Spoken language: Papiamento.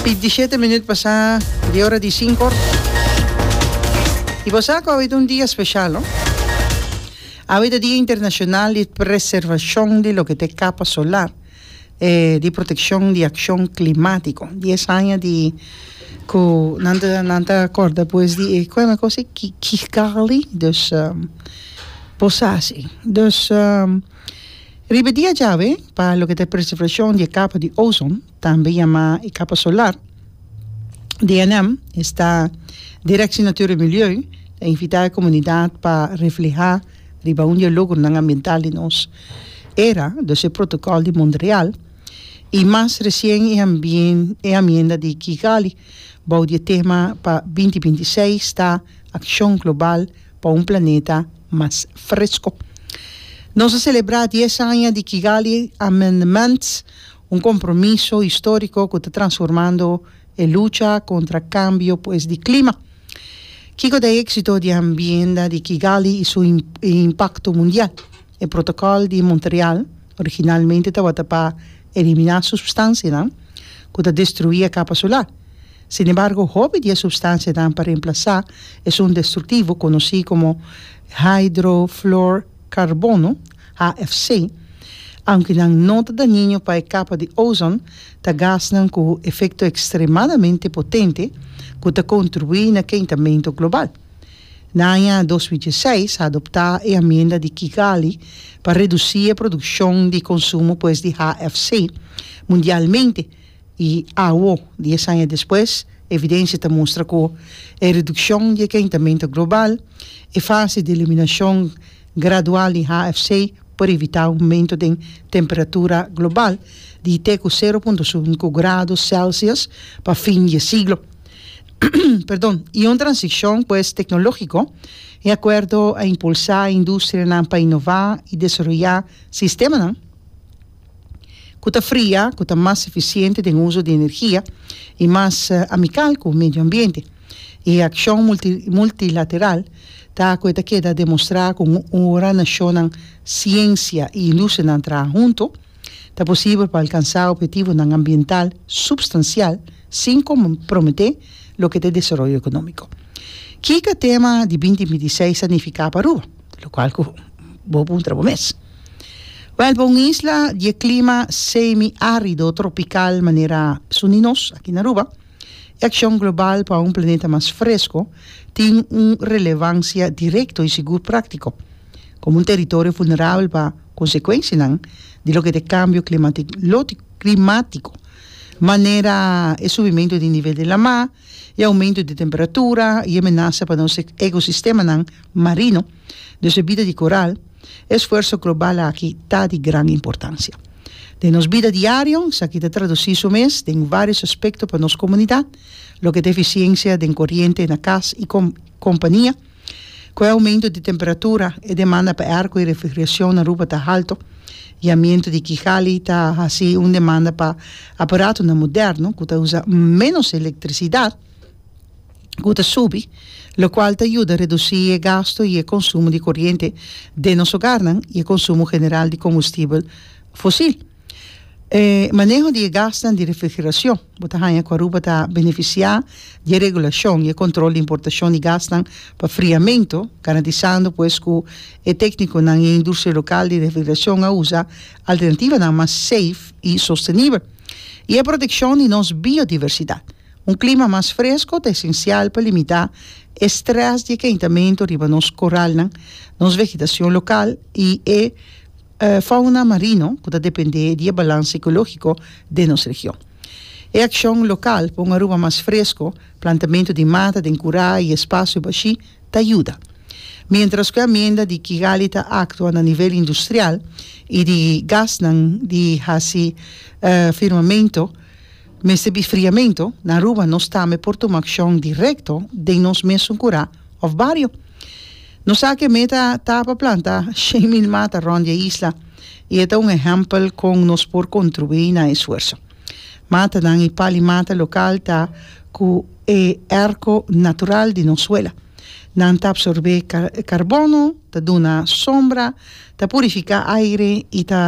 Bintisiete minuut pasá di ora di sinko. I bo sa ku awe ta un dia speshal, no? Awe ta Dia Internashonal di Preservashon di loke ta e kapa solar, eh di protekshon di akshon klimatiko. Dies aña di ku nan ta nan ta kòrda pues di e kòne kos e ki Kigali, dus bo sa si. Dus. Riba e dia djawe pa loke ta e preservashon di e kapa di ozon, tambe yamá e kapa solar, DNM, esta Direksie Natuur en Milieu ta invitá e komunidat pa reflehá riba un di e logronan ambiental di nos era, dos e Protokòl di Montreal i mas resien e e Amienda di Kigali bou di e tema pa binti binti seis ta Akshon Global pa un Planeta mas fresco. Nos a celebra dies aña di Kigali Amendments, un compromiso historico cu ta transformando e lucha contra cambio pues di clima. Kico ta e exito di Ambienda di Kigali y su impacto mundial? E Protocol di Montreal originalmente tabata pa elimina substancianan cu ta destrui e capa solar. Sin embargo, hopi di e supstansianan pa remplasá esun destruktivo konosí komo hidrofluorkarbono, HFC, aunke nan no ta dañiño pa e kapa di ozon, ta gasnan ku efekto ekstremadamente potente ku ta kontribuí na kentamentu global. Na aña dos mil dieseis a adoptá e amienda di Kigali pa redusí e produkshon di konsumo pues di HFC mundialmente, I awo, dies aña despues, evidensia ta mustra ku e redukshon di e kentamentu global, e fase di eliminashon gradual di HFC por evitá aumento den temperatura global di te ku sero punto sunku grado sèlsius pa fin di e siglo. Perdon, i un transikshon pues teknologiko, e akuerdo a impulsá e industrianan pa inová i desaroyá sistemanan, ku ta fria, ku ta mas efisiente den uso di energia i mas amikal ku medio ambiente. E akshon multilateral ta ku e ta keda demostrá ku ora nashonnan, siensia i industrianan traha huntu, ta posibel pa alkansá ophetivonan ambiental supstansial sin komprometé loke ta e desaroyo ekonómiko. Kiko e tema di binti binti seis ta nifiká pa Aruba? lokual ku bo puntra bo mes. Wèl, pa un isla di e klima semi-árido tropikal manera su di nos aki na Aruba, e akshon global pa un planeta mas fresko tin un relevansia direkto i sigur práktiko, komo un teritorio vulnerabel pa konsekuensianan di loke ta e kambio klimático, manera e subimentu di nivel di la mar, e aumento di temperatura y e menasa pa nos ecosistemanan marino, dus e bida di coral, e esfuerso global aki ta di gran importancia. Den nos bida diario, esaki ta traduci su mes den varios aspecto pa nos comunidad, loke ta eficiencia den coriente na cas y compania, Ku e oumentu di temperatura, e demanda pa airko i refrigerashon na Aruba ta haltu, i amientu di Kigali ta hasi un demanda pa aparatunnan moderno ku ta usa ménos elektrisidat ku ta subi, lokual ta yuda redusí e gastu i e konsumo di koriente den nos ogarnan i e konsumo general di kombustibel fosil. E maneho di e gasnan di refrigeracion. Bo ta haña cu Aruba ta beneficia di e regulacion y e control di importacion di gasnan pa friamento, garantisando pues cu e tecniconan y e industria local di refrigeracion a usa alternativanan mas safe y sostenibel. Y e proteccion di nos biodiversidad. Un clima mas fresco ta esencial pa limita e stress di e caintamento riba nos coralnan, nos vegetacion local y e. e fauna marino ku ta dependé di e balans ekológiko den nos region. E akshon lokal pa un Aruba mas fresko, plantamentu di mata den kurá i espasio bashí, ta yuda. Miéntras ku e amienda di Kigali ta aktua na nivel industrial i di gasnan di hasi firmamento, Mester di friamentu, na Aruba nos tambe por tuma akshon direkto den nos mesun kurá òf bario. Nos sa ke meta ta pa planta shen mil mata rònt di e isla i e ta un ehèmpel kon nos por kontrubuí na e esfuerso. Matanan i pali mata lokal ta ku e èrko natural di nos suela. Nan ta absorbé karbono, ta duna sombra, ta purifiká aire i ta.